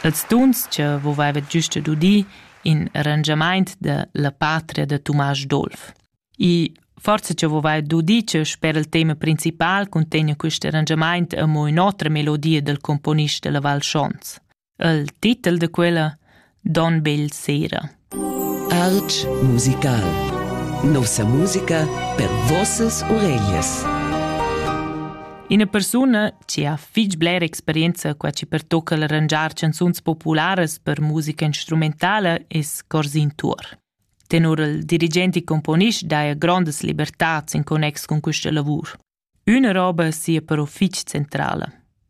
Ils dunschs vouva havet güsta dudi in arrangiamaint da la patria da Tumasch Dolf. I forsa cha vouva dudi cha sper il tema principal cuntegna quist arrangiamaint amo ün'otra melodia dal componist da la Val Schons. Il titel da quella Don Bel sera. Artg musical. Nossa musica per vossas oreglias. Ina persuna che ha fitg blera experienza qua ci pertocca l'arrangiar canzuns popularas per musica instrumentala es Corsin Tuor. Tenor il dirigente e componist daja grondas libertats in connex con questa lavur. Üna roba sia però fich centrala.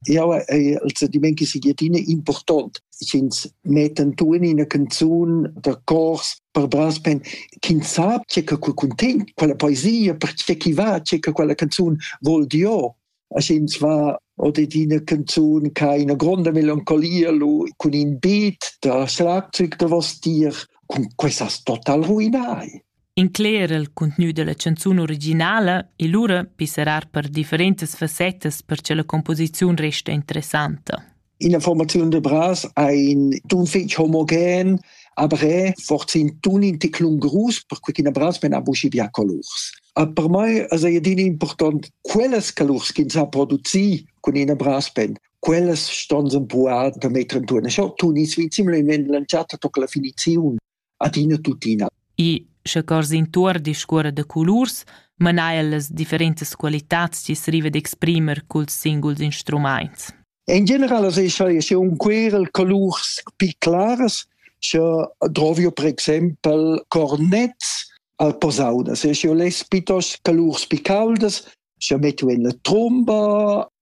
Jau hai il sentiment che sia adina important. Ins metta tuin ina canzun da cors per brass pen ch'ins sa tge che quel cuntegn, quella poesia, per tge chi va, tge che quella canzun vol dir. Als ins va oder eine Canzon keine gronda Melancholia lu cun in beat da schlagzeug da vos dir, cun quest'as total ruinai. Incler il contgnü della canzun originala e lura pisserar per differentas fassettas per che la composiziun resta interessanta. In informaziun de Bras ein d'un fetg homogen, aber fortin tun in ticlun grus per quei ch'ina Bras men ha buci bia colurs. A per mai es ei adina important quellas colurs ch'ins ha produci cun ina brass band. Quellas ston sen puar da metter en turna. Scho tun is vi similmente lanciata toca la finiziun. adina tuttina. E sche cors intuor discuorra da colurs, mana el las differentas qualitads chi s'riva d'exprimer culs singuls instrumaints. In general as escha sche un querel colurs pi claras, sche drovio per exempel cornets al posaunas, sche ho less pitos colurs pi caldas, sche metto en la tromba